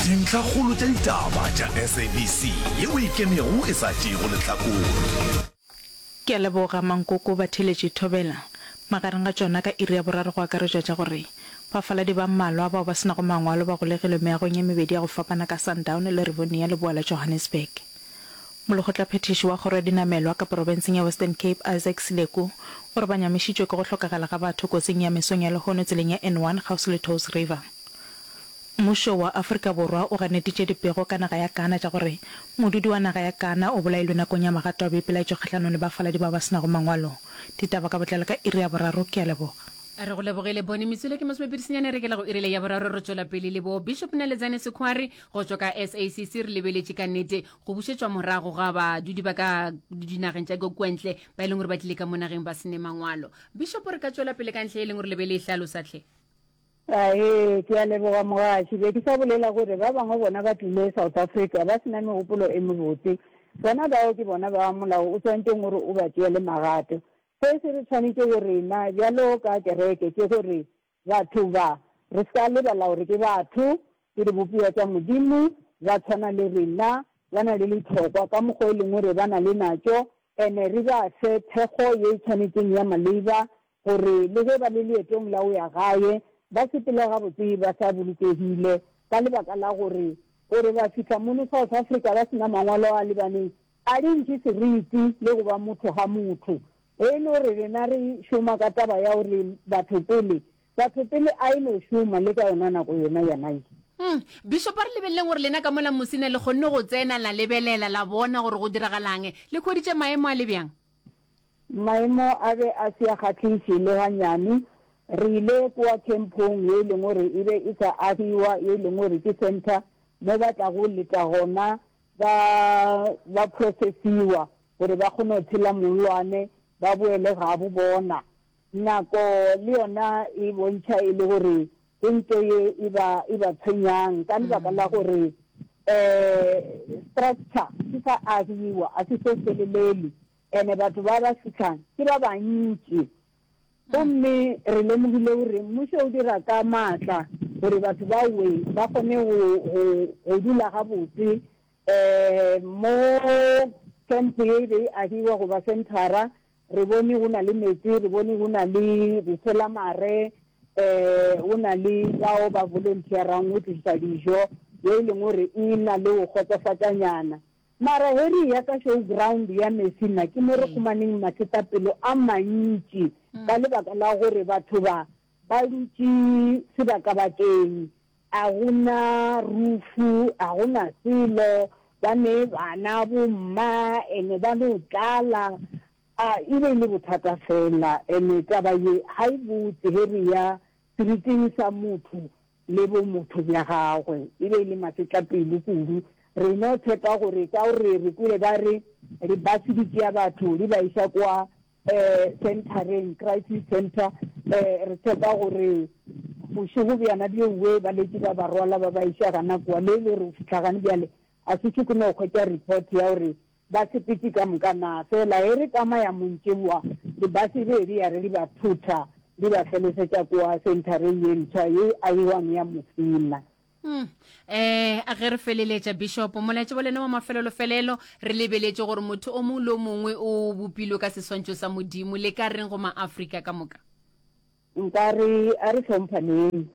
Dintlhakgolo tša ditaba tša SABC ye o e kenego e sa tšeego lehlakore. Ke a leboga mankoko ba theeletše thobela. Magareng ga tšona ka iri ya boraro go akaretšwa tša gore, Bafaladi ba mmalwa bao ba se nago mangwalo ba golegilwe meagong ye mebedi ya go fapana ka Sundown le Rivonia leboa la Johannesburg. Molekgotlaphethiši wa kgoro ya dinamelwa ka porofenseng ya Western Cape Isaac Sileku o re ba nyamišitšwe ke go hlokagala ga batho kotsing ya mesong ya lehono tseleng ya N1 kgauswi le Touws River. Mmušo wa Afrika Borwa o ganeditše dipego ka naga ya Ghana tša gore modudi wa naga ya Ghana o bolailwe nakong ya magato a boipelaetšo kgahlanong le bafaladi bao ba se nago mangwalo. Ditaba ka botlalo ka iri ya boraro. Ke a leboga. Re go lebogile Bony Metsule ke Mosibe Pidisinyane re kela go iri le ya boraro re tšwela pele le bo Bishop Naledzani Sekhuari go tšwa ka SACC re lebeletše ka nnete go bušetšwa morago ga badudi ba ka dinageng tša kwentle ba e leng gore ba tlile ka mo nageng ba sene mangwalo Bishop re ka tšwela pele ka ntlha ye e leng gore le be le e hlalosa hle? Ahee, ke a leboga mogaši. Be ke sa bolela gore ba bangwe bona ba tlile South Africa ba se na megopolo e mebotse. Bona bao ke bona ba Molao o swantšeng gore o ba tšeele magato. Se se re tshwanetše go rena bjalo ka kereke ke gore batho ba, re se ka lebala gore ke batho, ke dibopiwa tša Modimo, ba tshwana le rena, ba na le litlhokwa ka mokgwa o lengwe re ba na le natšo, and re ba fe thekgo ye e tshwanetšeng ya maleiba gore le ge ba le leetong la go ya gae, ba se phele gabotse ba sa bolokegile ka lebaka la gore gore ba fihla mono South Africa ba se na mangwalo a lebaneng a di ntšhi seriti le go ba motho ga motho. Ge e le gore rena re šoma ka taba ya gore batho pele, batho pele a e no šoma le ka yona nako yona ya 19. Umm. Bishop a re lebeleleng gore lena ka mola mose ne le kgonne go tsena la lebelela la bona gore go diragalang. Le hweditše maemo a le bjang? Maemo a be a se a kgahliše le ganyane. Re ile kua khemphong ye e leng gore e be e sa agiwa, ye e leng gore ke centre mo ba tlago leta gona ba, ba process-iwa gore ba kgone go tshela mollwane ba boele gabo bona. Nako le yona e bontšha e le gore ke nto ye e ba, e ba tshwenyang ka lebaka la gore um structure se sa agiwa, ga se so felelele. Ene batho ba ba sehlana ke ba bantši. Gomme re lemogile gore mmušo o dira ka maatla gore batho ba we ba kgone go, go, go dula gabotse um mo kempo ye e be e agiwa go ba senthara. Re bone go na le meetse, re bone go na le bofelamare, um go na le bao ba volunteer-rang go tlišetša dijo, ye e leng gore e na le go kgotsofatšanyana. Mara Harry ya ka show ground ya Mercy nna ke mo re khumaneng masetapelo a mantši ka lebaka la gore batho ba ba dutše sebakabakeng a go na rufu a go na selo ba ne bana bomma ene ba no tlala a e be e le bothata fela ene taba ye ga e botse Harry ya Seriting sa motho le bomotho bja gagwe e be e le masetlapelo kudu. Re no tshepa gore ka gore re kwele ba re libase di tšea batho di ba iša kwa centereng, crisis center, re tshepa gore bošego bjana bjo bjo ba letše ba ba rwala ba ba iša gana kwa le e le gore go fihla gane bjale ga se se ke no hwetša report ya gore Ba sepiti ka moka na, fela e re kama ya montšeboa, dibase di edi ya re di ba phutha, di ba felesetša kua senthareng ye ntshwa ye e agiwang ya Musina. Uhm. Eh, a ge re feleletša, Bishopo, Molaetša wa lena wa mafelelo-felelo, re lebeletše gore motho o mongwe le o mongwe o bopilwe ka seswantšho sa Modimo. Le ka reng go Maafrika ka moka? Nka re, a re hlomphaneng.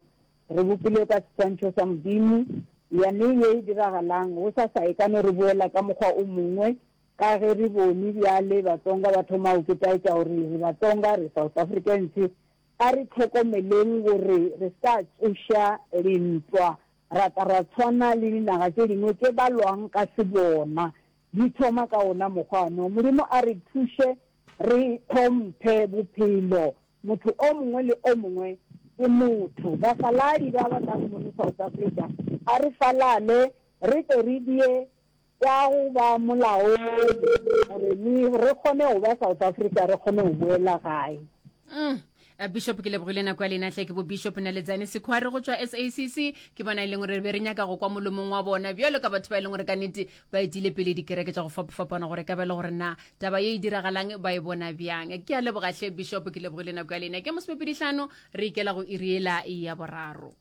Re bopilwe ka seswantšho sa Modimo. Yaneng ye e diragalang, gosasa e ka no re boela ka mokgwa o mongwe, ka ge re bone bjale Batsonga ba thoma go ketaetša gore re Batsonga, re South Africans. A re hlokomeleng gore re se ka tsoša lentwa, ra tla ra tshwana le dinaga tše dingwe tše ba lwang ka sebona. Di thoma ka wona mokgwa no. Modimo a re thuše Re hlomphe bophelo, motho o mongwe le o mongwe ke motho. Bafaladi ba ba nago mono South Africa, a re falale re tle re die tša go ba molaong gore le re kgone go ba South Africa, re kgone go boela gae. Eh, bishop ke lebogile nako ya lena tle ke bo bishop naletsane sekhware go tswa sacc ke bona e leng gore be re nyaka go kwa molomong wa bona bjalo ka batho ba e leng gore ka nete ba etile pele dikereke tša go fapafapana gore ka bele gore na taba ye e diragalang ba e bona bjang ke a lebogatlhe bishop ke lebogile nako ya lena ke mosomepeditlhano re ikela go iriela ya boraro